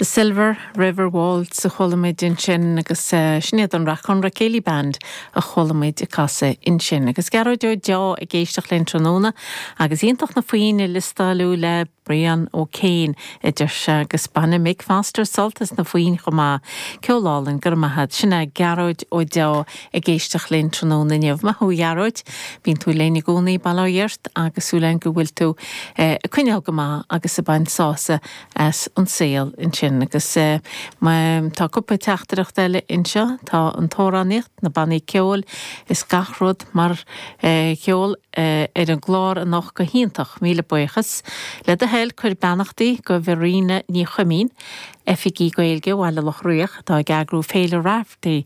The Silver River Waltz a chualamid ansin agus sin iad an Rathconrath Céilí Band a chualamid ag casadh ansin. Agus Gearóid Ó Deá ag éisteacht linn tráthnóna agus iontach na foinn a liostáil tú le Brian O'Kane a deir sé agus baineann Mick Foster sult as na foinn chomh maith. Ceol álainn, go raibh maith agat. Sin é Gearóid Ó Deá. Ag éisteacht linn tráthnóna inniu. Maith thú a Ghearóid. Bíonn tú linn i gcónaí, bail ó Dhia ort, agus súil againn go bhfuil tú ag coinneáil go maith agus ag baint sásamh as an saol ansin. Agus tá cúpla teachtaireacht eile anseo. Tá an t-amhránaíocht, na bannaí ceoil is gach rud mar cheol ar an gclár anocht go hiontach. Míle buíochas. Le do thoil, cuir beannachtaí go Verena Ní Chuimín, Oifigeach Gaeilge Bhaile Locha Riach, atá ag eagrú Féile Raifteirí,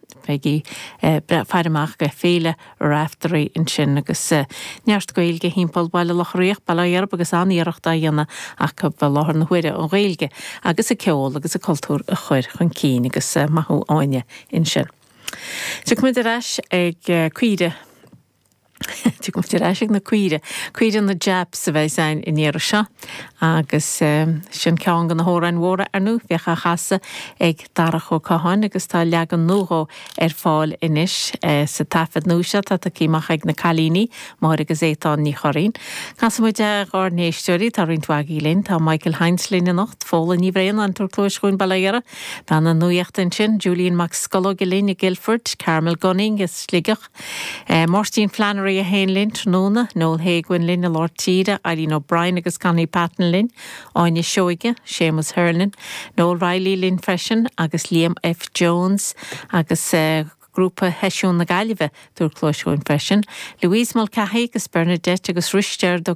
bígí ag faire amach le Féile Raifteirí ansin agus neart Gaeilge thimpeall Bhaile Locha Riach, bail ó Dhia oraibh agus an-iarracht á dhéanamh acu i láthair na huaire an Ghaeilge agus an ceol agus an cultúr a chur chun cinn agus maith thú Áine ansin. Tiocfaimid ar ais ag caoirigh. Tiocfaimid ar ais ag na caoirigh. Caoirigh na Japs a bheas ann an iarraidh seo agus sin ceann de na hamhráin mhóra ar ndóigh. Bhíodh á chasadh ag Darach Ó Catháin agus tá leagan nua dhó ar fáil anois sa taifead nua seo atá tagtha amach ag na cailíní, Máire agus Étáin Ní Churraoin. Casfaimid é dhár n-éisteoirí, tá roinnt mhaith agaí linn. Tá Michael Hynes linn anocht, Fódhla Ní Bhraonáin, ag tabhairt cluais dhúinn bail ó Dhia uirthi, bean na nuachta ansin, Julian Mac Scolóige linn i Guildford, Carmel Gunning as Sligeach, Máirtín Flannery é féin linn tráthnóna, Noel Hay Guin linn i Lár Tíre, Eileen O'Brien agus Connie Patton linn, Áine Seoige, Séamus Hernon, Noel Reilly linn freisin agus Liam F Jones agus grúpa sheisiún na Gaillimhe, ag tabhairt cluais dhúinn freisin, Louise Mulcahy agus Bernadette agus Risteard Ó.